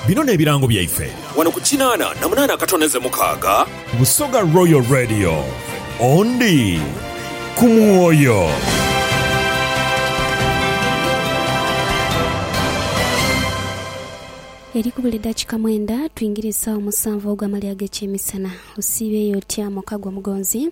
Bino n'ebirango byaife. Wano ku kinaana na munaana akatondeze mukaaga. Busoga Royal Radio, Ondi ku mwoyo. Eri kubula edakika mwenda twingire esawa musanvu ogwamali agekyemisana. Osiiba eyo otya muka gwe omugonzi?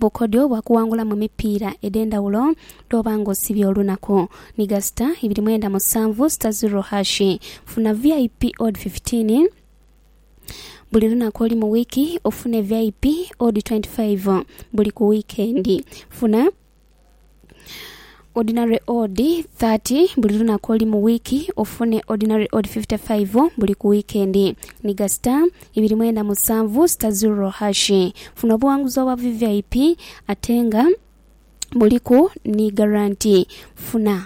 bukodyo bwa kuwangulamu emipiira edh'endhawulo dh'oba nga osibye olunaku ni gasita ibiri mwenda musanvu sita ziro hash. Funa VIP Odd fifteen buli lunaku olu mu wiiki ofune VIP Odd twenty five buli ku wiikendi. Funa. ordinary odd 30 buli lunaku oli mu wiiki ofune ordinary odd 55 buli ku wiikendi niga star ibiri mwenda musanvu star zero hashi funa obuwanguzi obwa vvip ate nga buliku ni garanti funa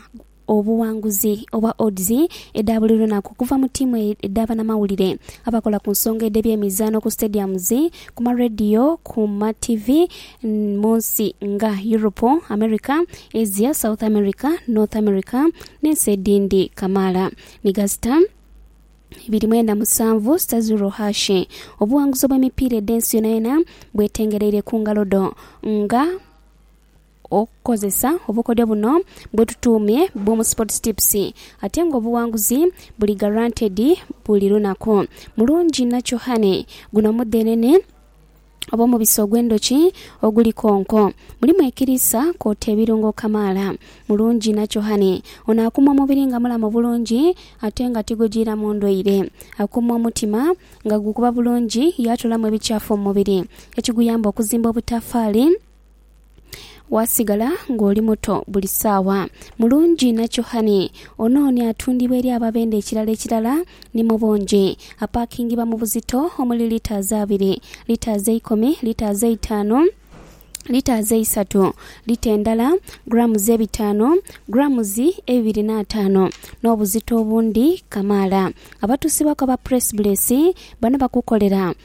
obuwanguzi obwa odds edha buli lunaku okuva mu tiimu edha banamawulire, abakola ku nsonga edh'ebyemizaano ku stadiums, ku ma radio, ku ma TV mu nsi nga Europe, America, Asia, South America, North America n'ensi edhindi kamaala ni ga sita ibiri mwenda musanvu, sita zero hash. Obuwanguzi obw'emipiira edh'ensi yonayona bwetengereire ku ngalo dho nga. okukozesa obukodyo buno bwetutuumye Boom Sports Tips ate nga obuwanguzi buli guaranteed buli lunaku. Mulungi Natural Honey, Guno mudhenene oba omubisi ogw'endhoki oguli konko. Mulimu ekiriisa kwoota ebirungo kamaala. Mulungi Natural Honey ono akuuma omubiri nga mulamu bulungi ate nga tigujiiramu ndwaire. Akuuma omutima nga gukuba bulungi yaatolamu ebikyafu mu mubiri ekiguyamba okuzimba obutafaali. Waasigala ng'oli muto buli saawa. Mulungi nakyo honey. Ono ni atundibwa eri ababenda ekirala ekirala ni mu bungi. Apaakingibwa mu buzito omuli litres abiri, litres eikumi, litres eitaanu, litres eisatu, lita endala, grams ebitaanu, grams ebibiri n'ataano n'obuzito obundi kamaala. Abatuusibwaku aba Press Bless bano bakukolera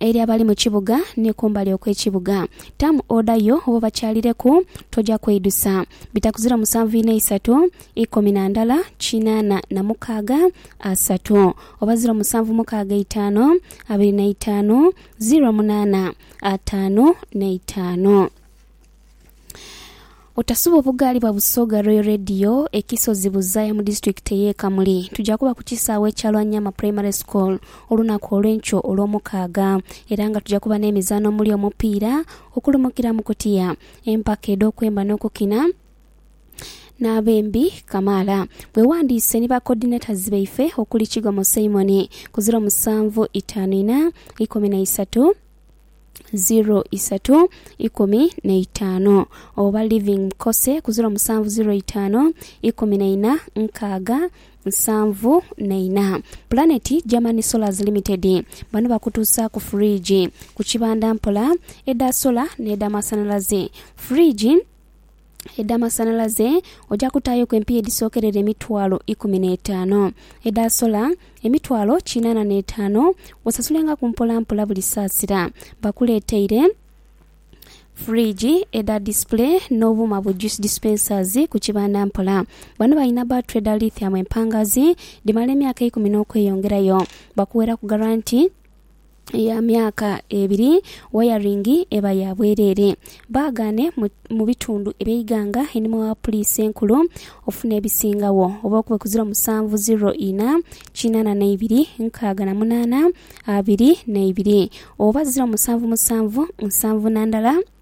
Eri abali mu kibuga ni kumbali okw'ekibuga. Tamu oda yo oba obakyalireku, toja kweidusa. Bitakuzira musanvu ina isatu, ikumi na ndala, kinaana na mukaaga, asatu. Oba ziro musanvu mukaaga itaanu, abiri na itaanu, ziro munaana, ataanu n'eitaanu. Otasuba obugaali bwa Busoga Royal Radio e Kisozi Buzaaya mu disitulikiti ey'e Kamuli. Tuja kuba ku kisaawe ekya Lwanyama Primary School olunaku olw'enkyo Olwomukaaga era nga tuja kuba n'emizaano omuli omupiira, okulumukira mu kutiya, empaka edh'okwemba n'okukina n'abembi kamaala. Weewandiise ni ba Coordinators baife okuli Kigomo Simon ku ziro musanvu itaanu inha, ikumi na isatu, ziro isatu ikumi na itaanu oba Living Mkose ku ziro musanvu ziro itaanu ikumi na ina nkaaga nsanvu na ina. Planet Germany Solars Limited bano bakutuusaaku fridge ku kibanda mpola edha solar n'edha masanhalaze. Fridge. edh'amasanhalaze oja kutaayoku empiiya edhisookerera emitwalo ikumi n'etaano, edha sola emitwalo kinaana n'etaano, osasulengaku mpolampola buli saasira. Bakuleeteire fridge edha display n'obuuma bu juice dispensers ku kibanda mpola. Bano balina battery dha lithium empangaazi dhimala emyaka eikumi n'okweyongerayo. Bakuweraku garanti. ya myaka ebiri, wayaringi eba ya bwereere. Baagaane mu mu bitundu eby'eighanga einhuma wa Puliisi Enkulu ofune ebisingagho oba okube ku ziro musanvu ziro ina kinana na ibiri nkaaga na munana abiri na ibiri oba ziro musanvu musanvu nsanvu na ndala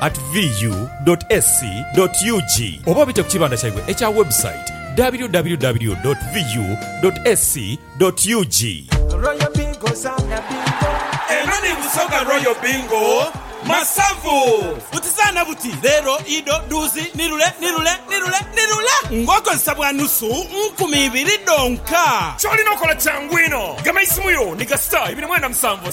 at VU dot SC dot UG oba obite ku kibanda kyaibwe ekya website www dot VU dot SC dot UG. Royal Bingo zaana bingo. Eno ni Busoga Royal Bingo Masavu. Buti zaana buti, leero, ido, duuzi, nirule, nirule, nirule, nirule ng'okozesa bwa nusu nkumi ibiri dhonka. Ky'olina okola kyangu inho. Gema eisimu yo ni ga star ibiri mwenda musanvu,